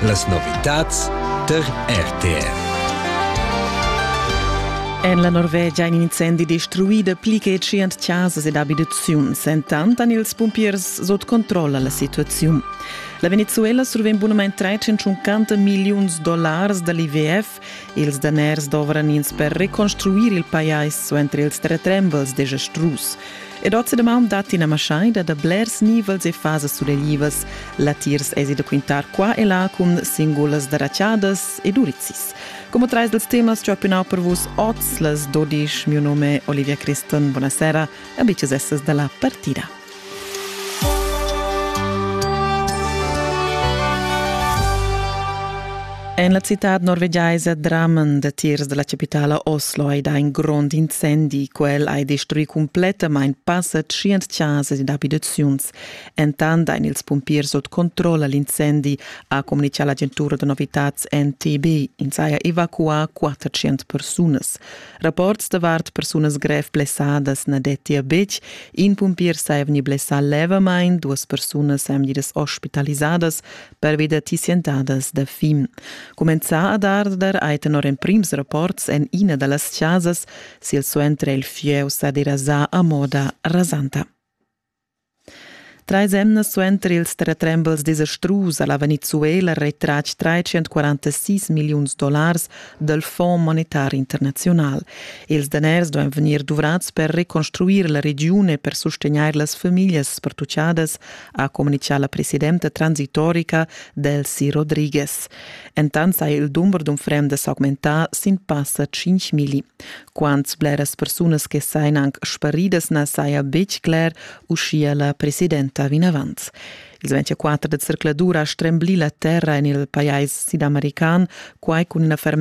Las novitads tar RTR. En la Norvegia è in incendi destruida pli che tschient chasas ed abitaziuns. Entant han ils pumpiers sut controlla la situaziun. La Venezuela survegn bunamain 350 milliuns dollars da l'IWF Ils daners dovran ins per reconstruir il pajais suenter ils retrembels desastrus. Ed oz damaun datti ina maschaida da blers nivels e fasas suleglivas. Latiers esi da quintar qua e là cun singulas darachadas ed urizzis. Come trais dels temas ci ho piunau per vus oz las 12, mio nome è Olivia Christen, buonasera, amiches essas da la partida. En la citad norvegiaisa draman datiers della capitala Oslo hai dà in grond incendi. Quel ha destruì complettamain passa tschient chasas ed abitaziuns. Entant ein ils pumpiers sut controlla l'incendi, ha comunicà l'agentura da novitads NTB. Ins haja evacuà 400 persunas. Rapports davart persunas grev blessadas na dettia betg. In pumpier sa vegni blessà levamain, duas persunas èn vegnidas ospitalisadas pervi da tissientadas da fim. Cumenzà ad arder hai tenor emprims rapports en ina da las chasas silsuenter il fieu sa derasà a moda rasanta. Trais emnas suenter ils terratrembels desastrus ha la Venezuela retratg 346 milliuns dollars dal Fonds monetar internaziunal. Ils daners duain vegnir duvrads per reconstruir la regiun e per sustegnair las famiglias spertuchadas, ha communitgà la presidenta transitorica Delcy Rodriguez. Entant saja il dumber d'unfrendas augmentà sin passa 5 milli. Quants bleras persunas che sajan anc sparidas na saja betg cler, uschia la presidenta vinavant. Il 24 da zercladur ha stremblì la terra en il pajais sidamerican, quai cun ina fermezza